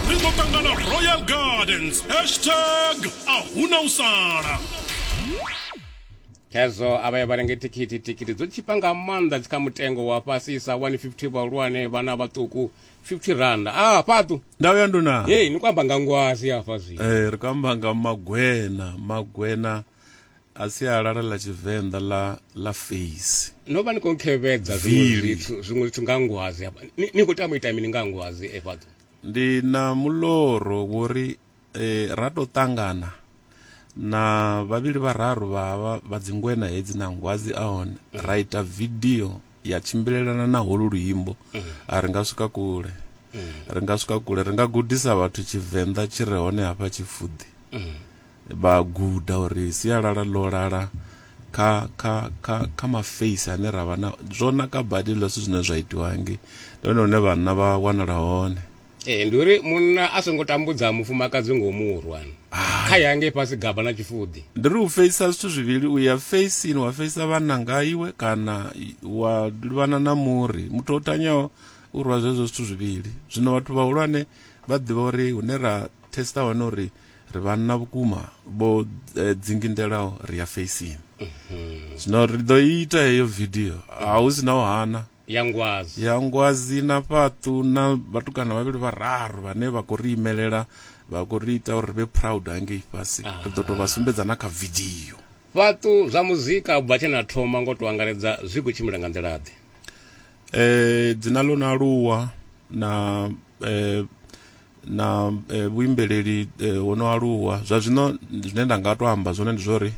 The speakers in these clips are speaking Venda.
ri ḓo ṱangana royal gardens hashtag a huna u sala hezwo a vha ya vha renge thikhithi thikhithi dzo tshipa nga maanḓa dzi kha mutengo wa fhasisa 150 vhahulwane vhana vhaṱuku 50 randa a ah, fhaṱu ndau ya nduna hey ni kwamba nga ngwazi hafha zwi eh ri kwamba nga magwena magwena a sialala ḽa tshivenḓa ḽa ḽa face no vha ni khou khevhedza zwiṅwe zwithu zwiṅwe zwithu nga ngwazi hafha ni khou tama ita mini nga ngwazi e fhadzo ndi na muloro wori eh, ra to tangana na vhavhili vhararu vha vha dzingwena hedzi na ngwazi a hone mm. ra ita video ya tshimbilelana na holu luimbo mm. a ri nga swika kule mm. ri nga swika kule ri nga gudisa vhathu tshivenḓa tshi re hone hafha tshifuḓi vha guda uri sialala ḽo lala kha kha kha kha maface ane ra vha na zwo naka badi hezwiḽa zwithu zwine zwa itiwa nge ndi hone hune vhanna vha wanala hone ee ndi uri munna a songo tambudza mufumakadzi ngo murwa kha ya ngei fhasi gaba na tshifuḓi ndi ri u feisa zwithu zwivhili u ya feisini wa feisa vhanna nga iwe kana wa livhana na muri muthu o tanyaho u rwa zwezwo zwithu zwivhili zwino vhathu vhahulwane vha ḓivha uri hune ra testa hone uri ri vhanna vhukuma vho eh, dzingindelaho ri ya feisini mhm. zwino ri ḓo ita heyo vidio a hu si na u hana ya ngwazi ya ngwazi na fhaṱu na vhatukana vhavhili vhararu vhane vha khou ri imelela vha khou ri ita uri ri vhe proud hangei fhasi ah. ri ḓo tou vha sumbedza na kha vidio fhaṱu zwa muzika bva tshe na thoma ngo to angaredza zwi khou tshimbila nga nḓila-ḓe um eh, dzina ḽo no aluwa na eh, na eh, vhuimbeleli eh, ho no aluwa zwa zwino zwine nda nga to amba zwone ndi zwori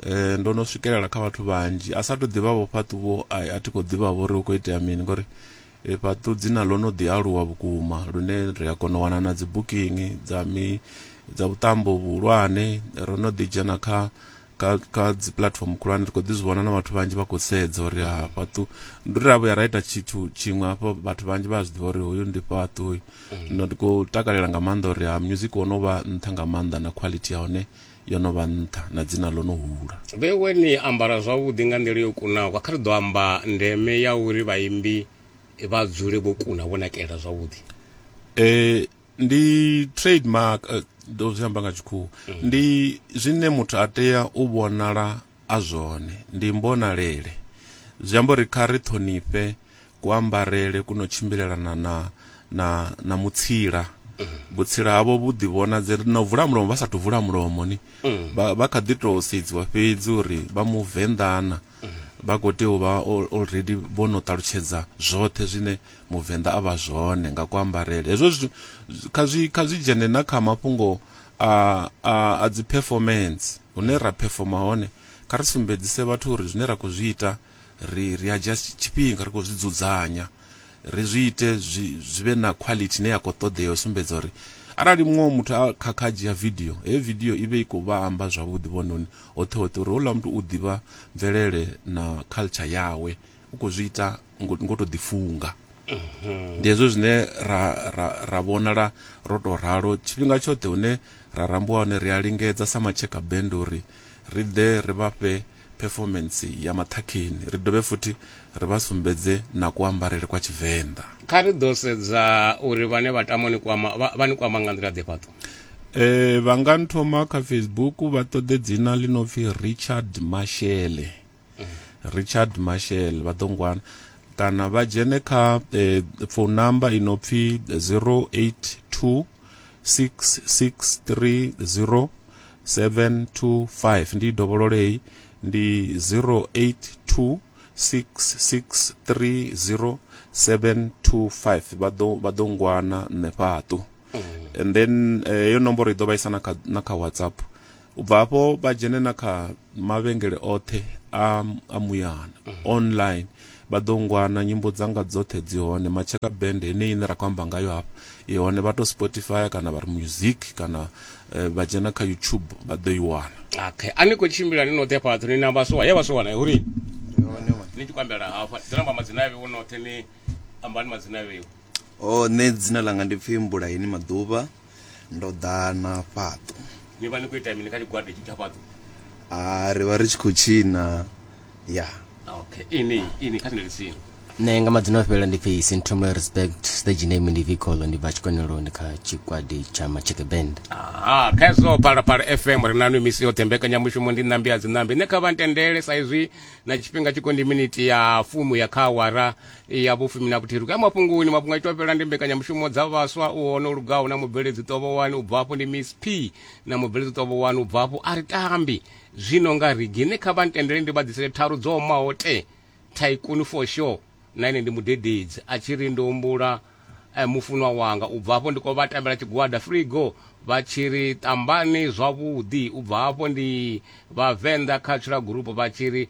eh, ndo no swikelela kha vhathu vhanzhi a sa to ḓivha vho fhaṱuvho a a thi khou ḓivha vho ri hu khou itea mini ngori eh, fhaṱu dzina ḽo no ḓi aluwa vhukuma lune ri a kona u wana na dzi booking dza mi dza vhuṱambo vhuhulwane ro no ḓi dzhena kha kha kha dzi platform khulwane ri khou ḓi zwi vhona na vhathu vhanzhi vha khou sedza uri ha fhaṱu ndi ri a vhuya ra ita tshithu tshiṅwe hafho vhathu vhanzhi vha a zwi ḓivha uri hoyu ndi fhaṱu uyu no ndi khou takalela nga maanḓa uri ha music wo no vha nṱha nga maanḓa na quality ya hone yo no vha nṱha na dzina ḽo no hula vhewe ni ambara zwavhuḓi nga nḓila yo kunaho kha ri ḓo amba ndeme ya uri vhaimbi vha dzule vho kuna vho nakela zwavhuḓi eh ndi trademark eh, ndo zwi amba nga tshikhuwa ndi zwine muthu a tea u vhonala a zwone ndi mbonalele zwi amba uri kha ri ṱhonifhe kuambarele kuno tshimbilelana na na na mutsila vhutsila havho vhu ḓivhonadze na u vula mulomo vha sathu vula mulomo ni vha vha kha ḓi tou sedziwa fhedzi uri vha muvenḓana vha khou tea u vha already vho no ṱalutshedza zwoṱhe zwine Muvenḓa a vha zwone nga kuambarele. Hezwo zwithu kha zwi kha zwi dzhene na kha mafhungo a a a dzi performance hune ra performer hone kha ri sumbedzise vhathu uri zwine ra khou zwi ita ri ri a dzhia tshifhinga ri khou zwi dzudzanya. ri zwi ite zwi zwi vhe na quality ine ya khou ṱoḓea u sumbedza uri arali muṅwe wa muthu a khakha a dzhia vidio heyo vidio i vhe i khou vha amba zwavhuḓi vhononi hoṱhe hoṱhe uri houḽa muthu u ḓivha mvelele na culture yawe u khou zwi ita ngo ngo tou ḓifunga ndi hezwo zwine ra ra ra vhonala ro tou ralo tshifhinga tshoṱhe hune ra rambiwa hone ri a lingedza sa matshekha bend uri ri ḓe ri vha fhe phefomentsi ya maṱhakheni, ri dovhe futhi ri vha sumbedze na kuambarele kwa Tshivenḓa. Kha ri ḓo sedza uri vhane vha tama u ni kwama vha, vha ni kwama nga nḓila ḓe fhaṱo. E, vha nga nthoma kha Facebook vha ṱoḓe dzina ḽi no pfi Richard Mashele. Richard Mashele vha ḓo ngwana kana vha dzhene kha e, phone number i no pfi 082 6630 725 ndi dovhololei ndi 0826630725 vha ḓo vha ḓo ngwana nṋe fhaṱu and then eh, yo nomboro i ḓo vhaisa na kha na kha whatsapp u bva hafho vha dzhene na kha mavhengele oṱhe a a muyana online Vha ḓo ngwana, nyimbo dzanga dzoṱhe dzi hone, Matshaka Band heneyi ine ra khou amba ngayo hafha i hone, vha to Spotify kana vha ri music kana vha dzhena kha YouTube vha ḓo i wana. Okay, a ni khou tshimbila ni noṱhe fhaṱho ni na vhaswa, he vhaswa wana huri ni tshi khou ambela hafha ni ḓo amba madzina avhe wo noṱhe ni ambani madzina avhe. Oh, nṋe dzina ḽanga ndi pfhi Mbulaheni Maḓuvha. ndo ḓa na fhaṱu ni vha ni khou ita mini kha tshigwada tshi tsha fhaṱu a ri vha ri tshi khou tshina ya okay ini ini kha sendele tsini nṋe nga madzina o fhelela ndi pfi sinthomule respect stage name ndi vicolo ndi bva tshikoneloni kha tshikwadi tsha macheke band aha kha hezwo phalaphala fm ri nanu misi yoṱhe mbekanyamushumo ndi ṋambi a dziṋambi nṋe kha vha ntendele sa izwi na tshifhinga tshiko ndi miniti ya fumu ya kha awara ya vhufumi na vhuthihi ri khou ya mafhungoni mafhungo a itwa fhela ndi mbekanyamushumo dza vhaswa u hone lugaho na mubveledzi ṱovhowani u bvafho ndi miss p na mubveledzi ṱovhowani u bvafho a ri tambi zwino nga rigi ne kha vha ntendele ndi vha ḓisele tharu dzo omaho te thaikuni for sure na ine ndi mudededzi a tshi ri ndo humbula eh, mufunwa wanga u bva hafho ndi khou vha tambela tshigwada frigo vha tshi ri tambani zwavhuḓi u bva hafho ndi vhavenḓa cultural group vha tshi ri